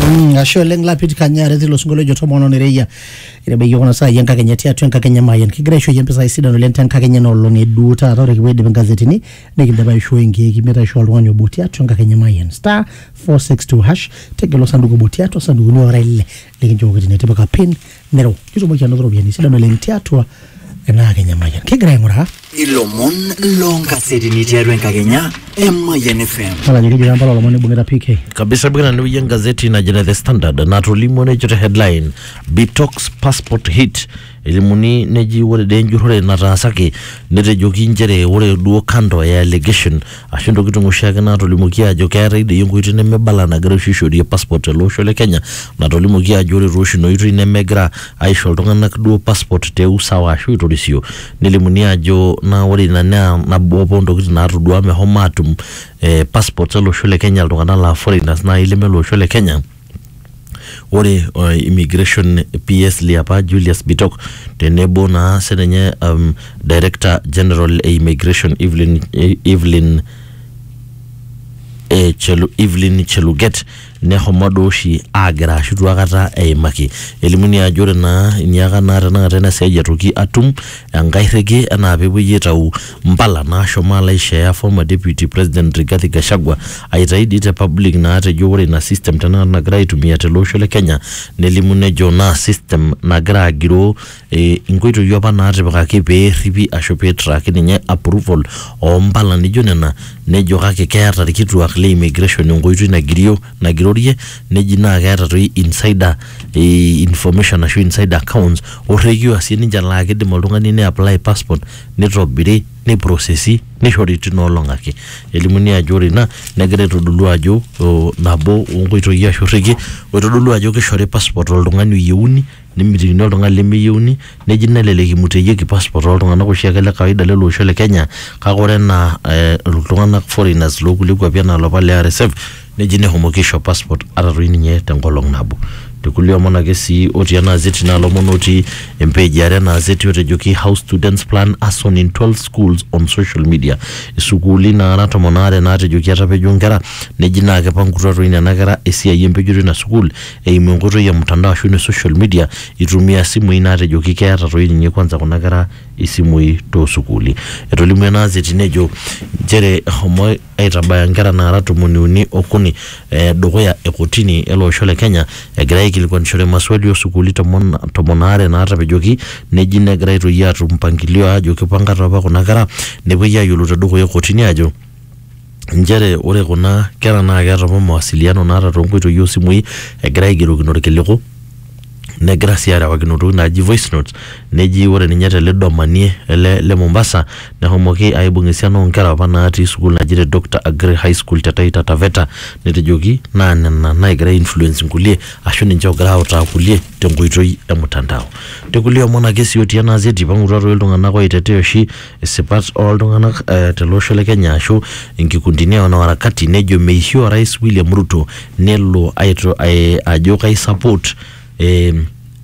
Mm, ashe oleng lapit kanyare tilo sinkolio ojo tomono nereia itabaiki kuna saai enkakenya tiatua enkakenya mayian kigira aishooyie mpisai sidan oleng tenkakenya ena olong eduu taata ore kipuo aidip ingazetini nikindipa aishoo enkeeki metaa aishoo oltung'ani obo tiatua enkakenya mayian star 462 hash tegelu osanduku obo tiatua sandukuni ora ile likinchooki tine tipika pin Nero, kitumoki anoto ropiyiani sidan oleng tiatua ena Kenya Mayian. Kigira aing'uraa Ilomon loonkasetini tiatua enkakenya e Mayian FM. Mala ajo keji Kampala olomoni oibung'ita PK. kabisa bwana niuye gazeti najina the standard natolimuo nejo te headline bitox passport hit elimuni neji ore dee enjurrore nataasaki netejoki nchere ore duo kando e allegation ashu ntokitin oshiake naatolimuoki aajo keetae doi enkoitoi nemebala nagira oshi aishorie passport tele osho le Kenya natolimuoki aajo ore tooshi ina oitoi nemegira aisho iltung'anak duo passport te usawa ashu aitorisio nelimuni aajo naa ore ina naa nabo apa ontokitin naatodua meshomo aatum eh, passport ele osho le Kenya iltung'anak laa foreigners naai leme lo osho le Kenya. Ore uh, immigration PS liapa Julius Bitok tenebo naa sininye um, Director General e Immigration Evelyn, Evelyn e Chelu, Evelyn Cheluget nehomo duo oshi aagira ashu itu akata eimaki. Elimuni ajo ore naa iniaka naa tenakata ena siai etoki atum enkae rreki enaa peepuoi aitau mpala naashomo alo aisheea former deputy president Rigathi Gachagua aitayu dii te public naatejo ore ina system tenakata nagira aitumia tele osho le Kenya nelimu nejo naa system nagira agiroo eh, inkoitoi apa naatipikaki pee erripi ashu pee eitraaki ninye approval oo mpala nijo nena nejo kake keeta irkituak le immigration enkoitoi nagirio nagirorie neji naa keeta toi insider eh, information ashu insider accounts orrekiu asie ninche laa kidim oltung'ani ne apply passport neitobiri, neiprosesi neishori tina olong ake. Elimuni ajo ore ina negira aitodolu ajo nabo oo nkoitoi ashu irrekie oitodolu ajo keishori passport oltung'ani oyieuni nemitikini oltung'ani lemeyieuni neji nelelek eimuteyieki passport ooltung'anak oshiake le kawaida lele osho le Kenya kake ore enaa iltung'anak foreigners loonkulie kuapi enaa iloopa le RSF Neji nehomoki aisho passport ata toi ninye te nkolong nabo. Te kulie omon ake sii otii ena azeti naa lomon otii empage e are ena azeti otejoki How Students Plan Arson in 12 Schools on Social Media. Isukuuli naara tomon aare naatejoki etapejo nkera neji naa keipangutua toi nena kera esiai empejoto ina sukuul eimu enkoitoi e mtandao aashu ine social media eitumia isimui naatejoki keeta toi ninye kwanza kuna kera isimui too sukuuli. Etolimuo ena azeti nejo nchere eshomo aitabaya nkera naara tomoni uni okuni eh, dukuya e kotini ele osho le Kenya egira aikilikuanishore maswali o sukuuli tomon, tomon aare naatapejoki neji negira aitoki aatum mpangilio aajo kipanga taa apa kuna kera nepuoi aayiolou te dukuya e kotini aajo nchere ore kuna kera naa keeta apa mawasiliano naata toonkoitoi oosimui egira aigerokino irkiliku negira sii arewakino ntokitin naaji voice notes neji ore ninye tele domanie ele le Mombasa nehomoki aibung esiana oonkera apa natii sukuul naji te Dr Aggrey High School te Taita Taveta netejoki naa nena naagira ai influence inkulie ashu ninche oogira autaa kulie tenkoitoi e mtandao. Te kulie omon ake sii otii ena gazeti eipang'utua toi iltung'anak oitetea oshi isipat ooltung'anak eh, tele osho le Kenya ashu inkikundini wanaharakati nejo meishio orais William Ruto nelo aito, ai, ajo kai support eh,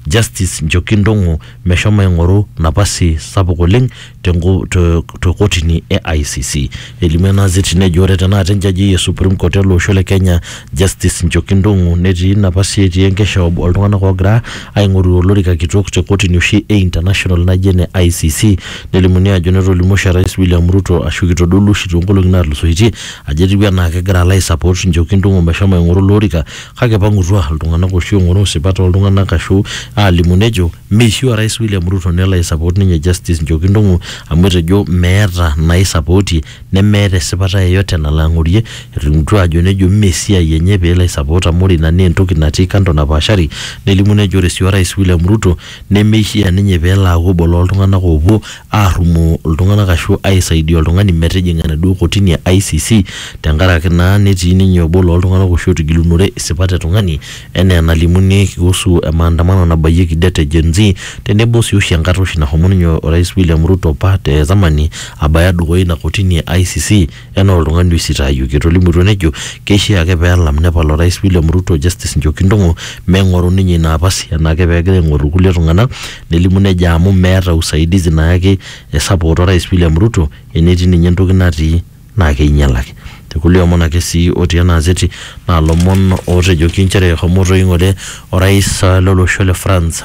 Justice Njoki Ndong'o meshomo aing'oru napasi sapuk oleng tenko- te te kotini e ICC. Elimu ena azeti nejo ore tenakata enjaji e Supreme Court ele osho le Kenya Justice Njoki Ndung'u netii napa sii etii enkeshob oltung'anak oogira aing'oru olorika kitok te kotini oshi e international naji ene ICC nelimuni ajo netolimuo oshi Orais William Ruto ashu kitodolua oshi toonkolong'i naatulusoitie ajo etiu enaa kegira alo aisupport Njoki Ndung'u meshomo aing'oru ilo orika kake ipang'utua iltung'anak oshi oing'oru isipat ooltung'anak ashu aalimu nejo meishiu Orais William Ruto nelo aisupport ninye Justice Njoki Ndung'u amu etejo meeta naisapootie nemeeta esipata yeyote nalo ang'orie, etolimutuo aajo nejo mme esiai enye pee elo aisapot amu ore ina naa entoki natii kando napaashari, nelimu nejo ore sii Orais William Ruto nemeishia ninye pee elo aaku obo loo ltung'anak oopuo aarrumoo ltung'anak ashu aisaidia oltung'ani metijing'a enaduo kotini e ICC tenkaraki naa netii ninye obo loo ltung'anak oshi ootigilunore isipat e tung'ani. Enaa enalimuni kuhusu emaandamano nabayieki det e Gen-Z tenebo sii oshi enkata oshi nahomo ninye Orais William Ruto apa te zamani abaya dukuya ina kotini e ICC enaa oltung'ani oisitaayioki. Etolimutuo nejo keishaa ake pee elam nepal Orais William Ruto Justice Njoki Ndung'u meng'oru ninye ina apasi enaake pee egira aing'oru ilkulie tung'ana nelimu nejo amu meeta usaidizi nayaki e support Orais William Ruto enetii ninye entoki natii naa keinyalaki. Te kulie omon ake sii otii ena azeti naa lomon ootejoki inchere eshomo toi ng'ole orais lo losho le France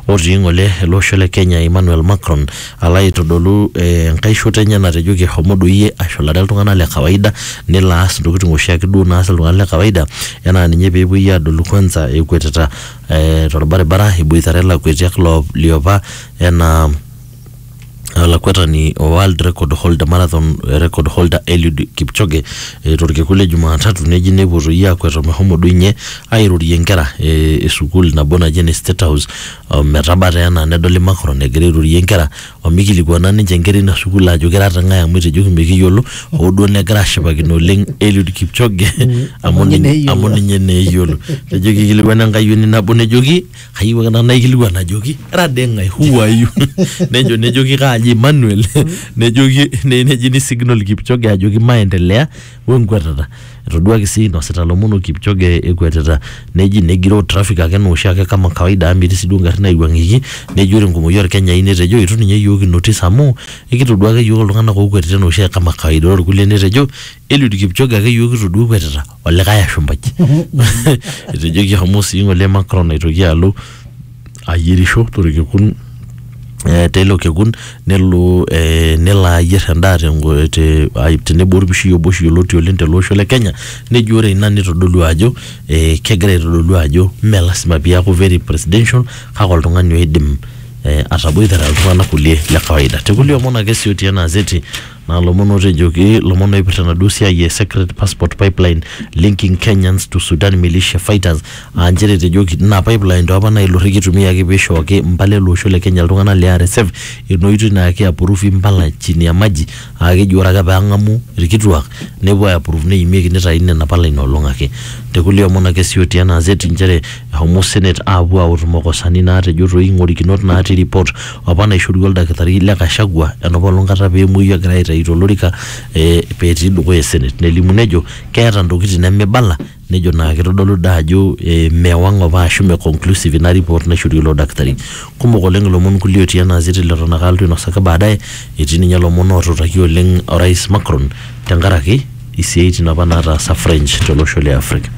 otii ng'ole ele osho le Kenya Emmanuel Macron alo aitodolu enkae shoto enye natejoki eshomo doi iyie ashulare iltung'anak le kawaida nelo aas intokiting oshiake duo naas iltung'anak le kawaida enaa ninye peepuoi aadolu kwanza ekwetita torbaribara eboitare ilakwetiak liopa enaa olakwetani o world record holder marathon record holder Eliud Kipchoge eh, torkekun le Jumatatu neji nepuo toi aakwet omehomo doi ninye airorie nkera eh, e sukuul nabo naji ene State House o metaba taa enaa nedoli Macron egira airorie nkera omikilikuana ninche nkera ina sukuul ajo kira te ng'ae amu etejoki mikiyiolo hoo duo negira ashipakino oleng Eliud Kipchoge amu ninye amu ninye naa eyiolo etejoki kikilikuana enkayioni nabo nejoki kayieu ake nanu naikilikuan ajoki era dee ng'ae who are you nejo nejoki kaaji Emmanuel nejoki ne- neji ni signal Kipchoge ajoki maendelea wenkwetata etoduaki sii inosita lomon o Kipchoge ekwetita neji negiroo traffic ake enaa oshiake kama kawaida amu metii sii duo ngarrin naiwuang'ieki neji ore enkumoki orkenyai netejo itu ninye iyiook inotis amu ekitodua ake iyiook iltung'anak ookwetita enaa oshiake kama kawaida ore irkulie netejo Eliud Kipchoge ake yiok kitodua ekwetita olikae ashumpai etejo kihomo sii ng'ole Macron aitoki alo ayierisho torkekun eh, teilo kekun nelo eh, nelo ayier endaa tengo- te- ai- tenebo orpishi obo oshi yioloti oleng tele osho le Kenya nejo ore ina nitodolu ajo eh, kegira aitodolu ajo mme lasima piaku very presidential kake oltung'ani oidim eh, ataboitare iltung'anak kulie le kawaida tekulie omon ake sii otii ena azeti Naa lomon ootejoki lomon ooipirta enaduo siai e secret passport pipeline linking Kenyans to Sudan militia fighters aa nchere etejoki ina pipeline too apa naa ilo rrekie eitumiaki pee eishooki mpala ele osho le Kenya iltung'anak le RSF ina oitoi naa ki approve impala chini ya maji aa keji ore ake pee eng'amu ilkituak nepuo ai approve neimieki neitaini nena pala ina olong ake. Te kulie omon ake sii otii ena gazeti nchere eshomo senate aapuo aautu makosani naatejo too ing'orikinot natii report apa naishorua oldakitari le Gachagua enapolong kata pee emuoyu egira aitayu tolorika eh, pee etii dukuya esenet nelimu nejo keeta ntokitin nemibala nejo naa kitodolu daa ajo eh, mewang apa ashu me conclusive ina report naishorua ilo dakitari kumok oleng ilomon kulie otii ena azeti leton ake alotu ainosaki baadaye etii ninye ilomon ootutaki oleng orais Macron tenkaraki isiaitin apa nataasa French tolosho le Africa